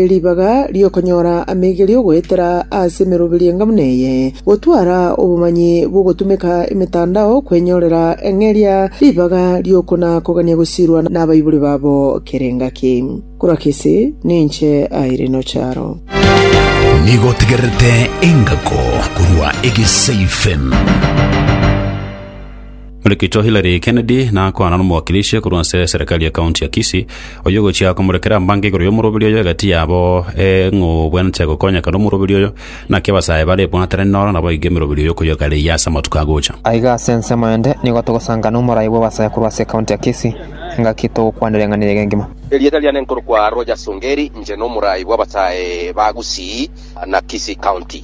Ribaga ri'okonyora amaigerio goetera ase emeroberi engamu neye, gotwara obomanyi bw'ogotumeka emetandao kwenyorera eng'eria ribaga ri'okona-kogania gosirwa nabaibori babo kera engaki. Korwa gese ninche aire nocharo. Nigo otegererete engako korwa egesaifem. Orekito Hillary Kennedy nakwana n'omowakilishi korwa ase eserekari ya county ya Kisii, oyio ogochia komorekera mbango igoro y'omoroberi oyo egati yabo ee ng'o obwenerete gokonyeka nomoroberi oyo, naki abasae bare ebwaterani noro naboigo emeroberi oyo koyogaria eyio ase amatuko agocha. Aiga ase ensemo ende nigo togosanga nomorai bw'abasae korwa ase county ya Kisii, engaki togokwana ring'ana eria egengima. Erieta riane nkorokwa Rogers Ongeri, inche nomorai bw'abasae ba Gusii na Kisii County.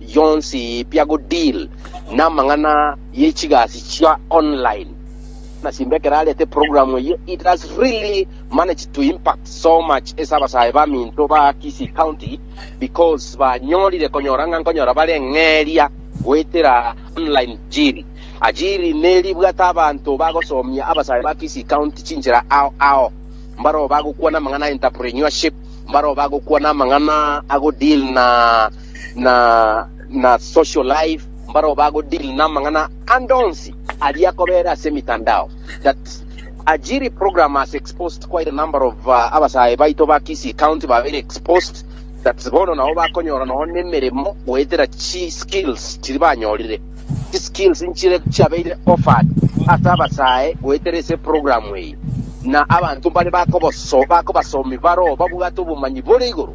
bionsi bia go deal namang'ana ye chigasi chia online na simba ekero arete program eye it has really managed to impact so much ase abasae baminto ba Kisii County because banyorire konyora ng'a nkonyora bare eng'eria goetera online jiri ajiri neri bwate abanto bagosomia abasae ba Kisii County chinchera ao ao mbaro bagokwana amang'ana entrepreneurship mbaro bagokwana amang'ana ago deal na na na social life mbaro bago deal na mang'ana andonsi aria kobera ase mitandao that ajiri program has exposed quite a number of uh, abasae baito ba Kisii county babere exposed that bono nabo bakonyora noho nemeremo goetera chi skills chiri banyorire chi skills nchire chiabeire offered ase abasae goetera ese program eyi na abanto mbare bakoboso bakobasomi baro babwate obomanyi bore igoro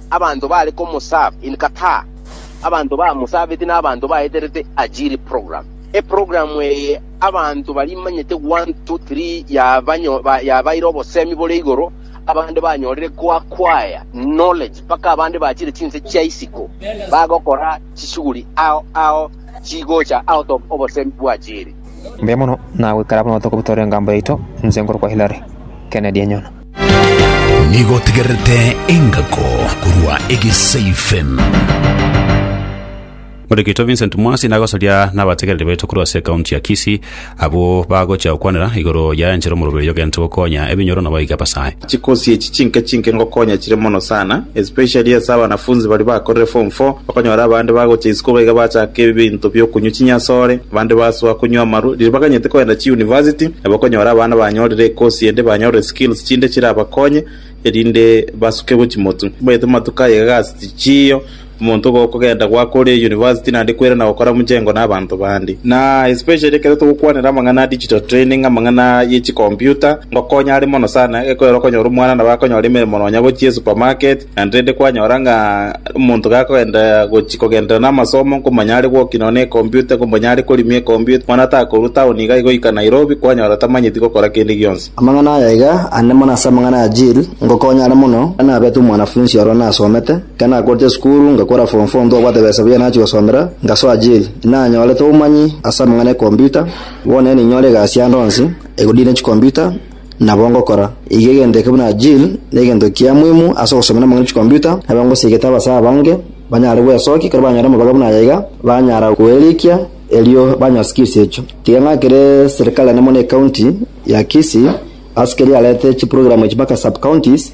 Abanto bare komosaba in Qatar. Abanto bamusabeti na abanto baeterete ajiri program. E program eye abanto barimanyete one two three yabanyo yabaire obosemi bore igoro abande banyorire ko acquire knowledge mpaka abande bachire chinse chia isiko bagokora chishughuli ao ao chigocha out of obosemi bwajiri. Mbuya mono, nagoikara buna botuko botore engambo yaito, inse nkorokwa Hillary. Kennedy Enyona. Nigo otegererete engako korwa egesaifem. Orekeitwe Vincent Mwasi nagosaria nabategereri baito korwa ase ekaunti ya Kisii abwo bagochia gokwanera igoro ya enchera omorobio oyo ogento gokonya ebinyoro na boiga basae. Chikosi echi chinke chinke ngokonya chire mono sana especially ase abanafunzi baria bakorire form four okonyora abande bagocha isiko iga bachaka ebinto biokonywa chinyasore abande basoa konywa amaru riria baganyete kogenda chi university Nabo okonyora abana banyorire ekosi ende banyorire skills chinde chirabakonye erinde basukegwe chimotu. Omanyete amatuko aya iga gasi tichiyo, omonto igo okogenda goaka ore university naende kwerana gokora mchengo na abanto bande. Na especially ekero togokwanera amang'ana a digital training, amang'ana ye chicomputer, ngokonya are mono sana, ekero okonyora omwana nabo akonyora emeremo nonya gochia esupermarket, Naende rende kwanyora ng'a omonto gakogenda gochia kogenderera namasomo, nkomanya are gwokia nonya nekompyuta, nkomanya are korimia ekompyuta, bono atakorwa taoni iga goika Nairobi, kwanyora tamanyeti gokora kende gionsi. Amang'ana aya iga ande mono ase amang'ana ya Jill, ngokonya are mono, ekero nabete omwanafunsi oro nasomete, ekero nakorete esukuru, ngakora form four ntobwate besa buya nachia gosomera, ngasoa Jill. Inanyorete obomanyi ase amang'ana ekompyuta, bono ninyore egasi ande onsi, egodine chikompyuta, Nabo ngokora iga egento eke buna Jill negento kia muimu ase ogosomera amang'ana chikomputa, nabo ngosigete abasae abange banyare bwesokia ekero banyora amabaga buna aya iga, banyara kweirikia erio banyore skills echio. Tiga ng'akere serikali enemo na ecounty ya Kisii ase keria yarete chiprogramu echi mpaka sub-counties,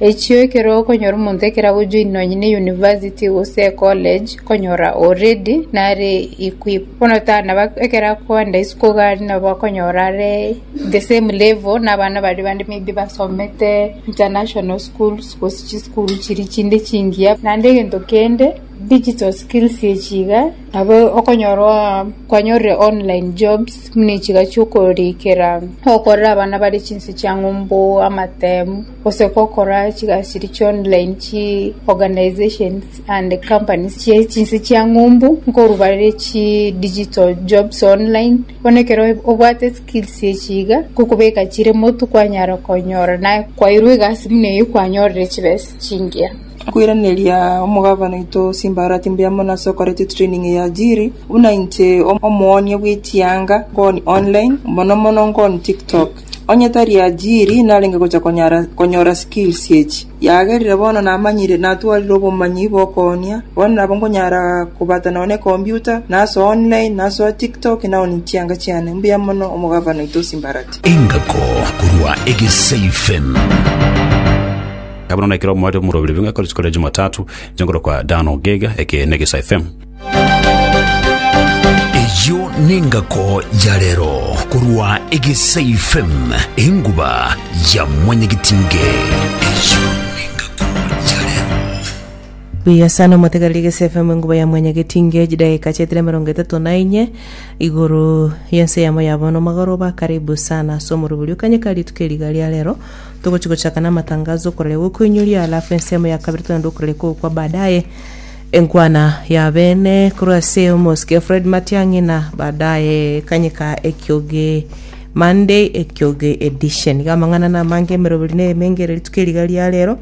Echio ekero okonyora omonto ekero agojoin nonye ne university gose ecollege, okonyora o ready nare equip. Bono tari nabo ekero akoenda isiko iga aria nabo okonyora are the same level na abana baria bande maybe basomete international schools gose chisukuru chiria chinde chingiya. Naende egento kende, digital skills echi iga, nabo okonyorwa kwanyorire online jobs buna echi iga chi'okorikera, okorera abana baria chinse chia ng'umbu, amatemu. gose gokora chigachiri chia online chi organisations and companies chie chinse chia ng'umbu nkorwa bare chi digital jobs online. Bono ekero obwate skills echi iga nkokobeka chire motu kwanyara konyora naye kwairwa egasi buna eyio kwanyorire chibesa chingiya. Nkoiraneria omogabana oito chimbaarati mbuya mono ase okoretia training ya Ajiri. Buna inche omoonia bw'echianga nkoni online, mono mono nkoni TikTok. Onye tari ajiri narenge gocha konyara konyora skills echi, yagerire bono namanyire natwarire obomanyi bokoonia, bono nabo nkonyara kobata nonya ne computer, naso online, nasoa tiktok, naonie chianga chiane. Mbuya mono omogavana oito o Simbarati. Engako korwa Egesei FM. Kabona na ekero omwate omorobiri bing'akore chikore Jumatatu, nchengoro kwa Dan Ogega, eke ne Gesa FM. Eyio nengako ya rero korwa Egesai FM enguba ya mwanyagitinge. Eyio nengako ya rero. Buya sana omotegereri Egesi FM enguba ya mwanyagetinge chidakika chiaetire emerongo etato na inye igoro yense yamo ya bono omogoroba karibu sana ase omorobori okanyeka rituko eri iga ria rero togochi gochaka namatangazo okorare gokoinyoria alafu ensemo ya kabere togende okorare kogokwa baadaye Enkwana ya bene korwa ase omosike Fred Matiang'i na baadaye ekanyeka ekioge Monday ekioge edition. Iga amang'ana na amange emeroberi na emengereria rituko eri iga ria rero.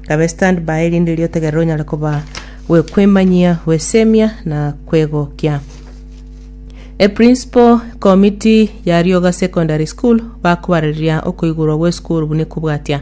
Kabe stand by erinde erio otegerere onyare koba gwekwemanyia, gwesemia na kwegokia. E principal committee ya Rioga Secondary School bakobareria okoigurwa gw'esukuru buna ekobwatia.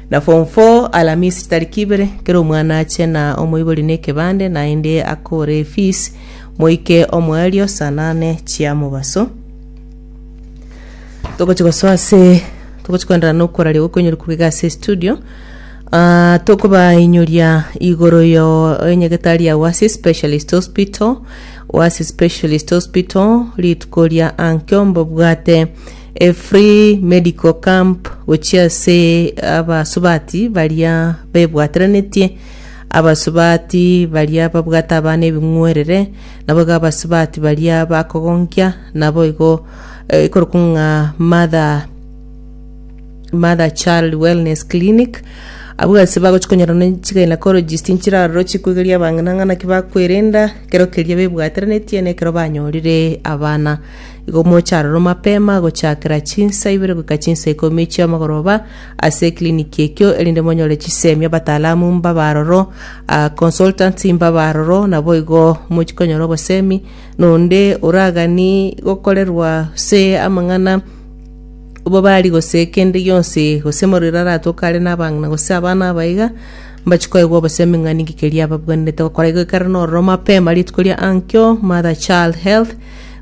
Na form four alamisi tariki ibere kera omwana ache na omoibori na ekebande naende akore efees moike omoerio saa nane chia mobaso togochi gosoa ase togochi koenderana na okoraria gokoinyorikwa iga ase studio Ah, tokobainyoria igoro yo enyegetari yao ase specialist hospital oasis specialist hospital rituko ria ankio mbobwate A free medical camp gochia ase abasubati baria bebwateranetie, abasubati baria babwate abana ebing'werere, naboigo abasubati baria bakogonkia, naboigo eh, ekorokwa ng'a mother mother child wellness clinic abwo ase bagochi konyora ne chigynecologist nchiraroro chikwegeria abang'ina ng'a naki bakwerenda ekero keria bebwateranetie na ekero banyorire abana Igo moche aroro mapema gochakera chinsa ibere goika chinsa ikomi chi'amagoroba ase eclinic ekio erinde monyore chisemi abataalamu mbabe aroro, ah, consultants mbabe aroro naboigo mochikonyora obosemi nonde oragani gokorerwa gose amang'ana obobari gose kende gionsi gose morero aratoke are nabang'ina gose abana abaiga mbachi koigwa obosemi ng'a ninki keria ababwenerete gokora igo ekero nororo mapema rituko ria ankio mother child health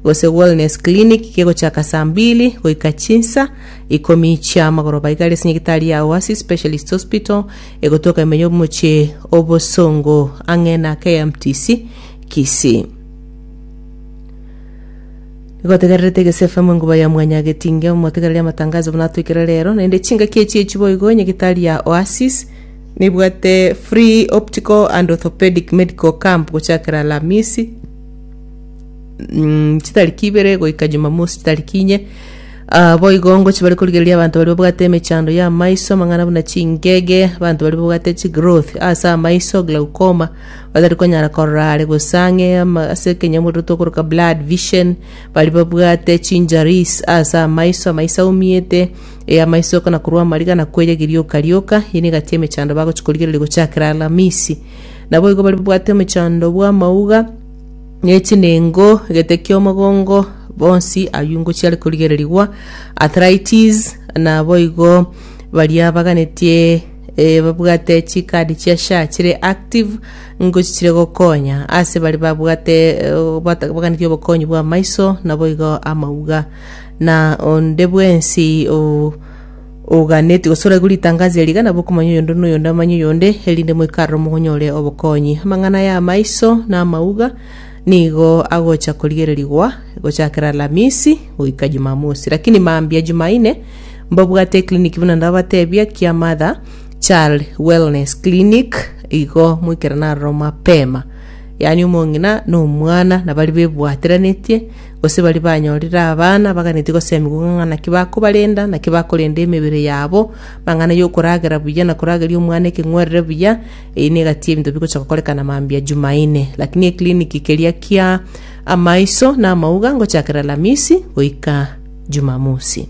gose wellness clinic kegochaka saa mbili goika chinsa ikomi chia amagoroba igare ase nyagitari ya Oasis Specialist Hospital egotoka emenyo y'omochie obosongo ang'e na KMTC Kisii. Nigotegererete Gese FM enkuba ya mwanya getinge omotegereri amatangazo buna atoikire rero naende chingaki echi echi boigo nyagitari ya Oasis nibwate free optical and orthopedic medical camp gochakera Alamisi mm, chitariki ibere goika jumamosi chitariki inye Ah, boigo ngochi bari korigereria abanto bari babwate emechando ya amaiso amang'ana buna chingege abanto bari babwate chigrowth ase amaiso glaucoma batari konyara korora are gosang'e ama- ase ekenyamurero tokoroka blood vision bari babwate chinjaris ase amaiso amaiso aumiete e amaiso kana korwa amariga na kwenya girioka rioka yene gati emechando bagochi korigereria gochakera alamisi naboigo bari babwate omechando bwa amauga ne chinengo, egete ki'omogongo, bonsi ayio ingo chiare korigererigwa, arthritis, naboigo baria baganetie eh, babwate chikadi chia SHA chire active ingo chichire gokonya ase bari babwate eh, bata- baganetie obokonyi bw'amaiso naboigo amauga na onde bwensi o oganetie gosora igoro ritangazo eri iga nabo okomanya oyonde na oyonde amanye oyonde, erinde moikaroro mogonyore obokonyi. Amang'ana aya amaiso na amauga nigo agocha korigererigwa gochakera Alamisi goika Jumamosi. Lakini mambia Jumaine mbabwate eclinic buna ndabatebia kia Mother Child Wellness Clinic igo moikerane aroro mapema. Yaani omong'ina na omwana nabari bebwateranetie Gose baria banyorire abana baganetie goseemigwa ng'a ng'a naki bakobarenda, naki bakorenda emebere yabo, mang'ana y'okoragera buya na korageria omwana ekeng'werere buya, eyio negati y'ebinto bigocha gokorekana mambia Jumaine. Lakini ekliniki keria kia amaiso na amauga ngochakera Alamisi goika Jumamosi.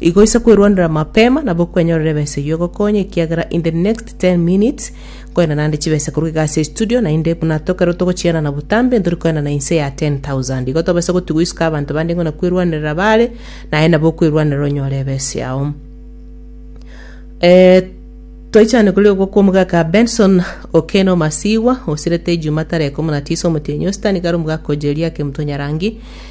Igo inse kwerwanera mapema nabo kwenyorere ebesa eyio egokonye ekiagera in the next 10 minutes nkoenda naende chibesa korwa egasi ya studio naende buna tokerwe togochianana botambe ntori koenda na inse ya 10,000 igo tobase gotigwa isiko abanto bande ng'una kwerwanerera baare naye nabo okwerwanera onyore ebesa yao Eh, twaichane kuri ogwo kwa omogaka benson okena omasibwa osirete ejuma tareko muna tisa omotienyi ositani kare omogaka ojeria kemutwe nyarangi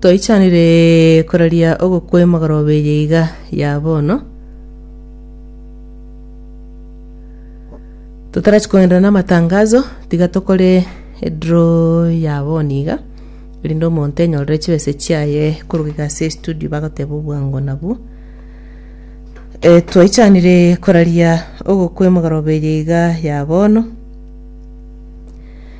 Toichanire koraria ogokwema gorobe eye iga ya bono. Totarachi kogenderera namatangazo, tiga tokore edraw ya bono iga, erinde omonto enyorere chibesa chiaye koruga iga ase estudio bagoteba obwango nabwo. Eh, twaichanire koraria ogokwema gorobe eye iga ya bono.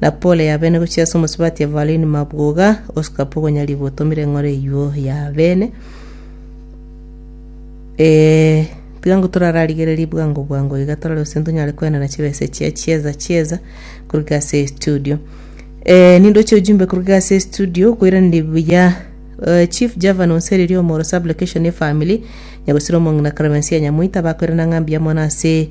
Na pole ya bene gochia ase omosubati Evalini mabwoga, osikape ogonyarigwa otomire eng'oro eyuo ya bene. Eh, tiga ngo torararigererie bwango bwango iga torare gose ntonyare kwenana chibesa chia chieza chieza koruga ase studio. Eh, nindoche ujumbe koruga ase studio koiraneria buya Eh, Chief Java nonsereria omoro sub location ya family nyagosira omong'ina Clemencia Nyamoita bakoirana ng'a mbuya mono ase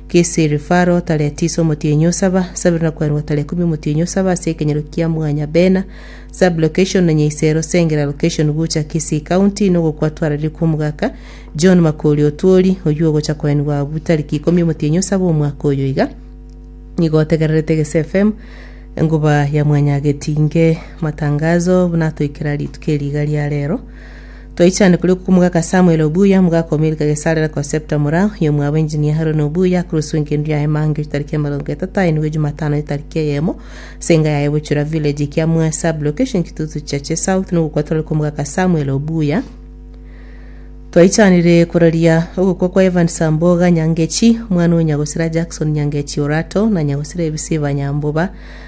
Kisiri, Faro, tare tisa omotienyi osaba, sabiri na kwerwa tare ikomi omotienyi osaba ase ekenyero kia mwanya Bena, Sub-location, Nonya Isero, Sengera location gocha Kisii County, nogokwa twararire kw'omogaka John Makori Otwori, oyio ogocha koenigwa abwo tariki ikomi omotienyi osaba omwaka oyo iga. Nigo otegererete Gese FM enguba ya mwanya getinge matangazo buna atoikera rituko eri iga ria rero. Toichane kuri okwo omogaka Samuel obuya, omogaka o Milka Gesarera ko Septa Mora, oyo omwabo Engineer Haroni obuya, akoroswe engendu yaye Mange chitariki emerongo etato aye nigo Jumatano etariki eyemo, ase enga yaye Buchura Village ekia Mwea Sub Location Kitutu Cheche South na ogokwa tore kwa omogaka Samuel obuya. Twaichanire kororia ogokwa kwa Evan Samboga Nyangechi, omwana o Nyagosira Jackson Nyangechi Orato na Nyagosira Ebisiba Nyamboba,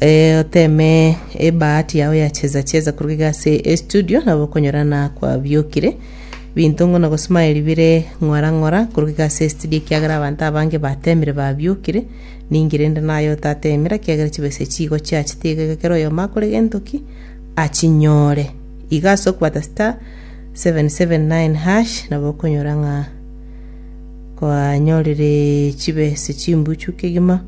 eh, oteme ebahati yao ya cheza cheza kuruga iga ase estudio nabo okonyora na kwabiokire binto ng'o na gosmile bire ng'ora ng'ora kuruga iga ase estudio ekiagera abanto abange batemire babiokire ninki rende naye otatemire ekiagera chibesa chigo chiachete iga iga kera oyomo akore gento ki achinyore iga ase okobata star 779 hash nabo okonyora ng'a kwanyorire chibesa chimbuchu kegima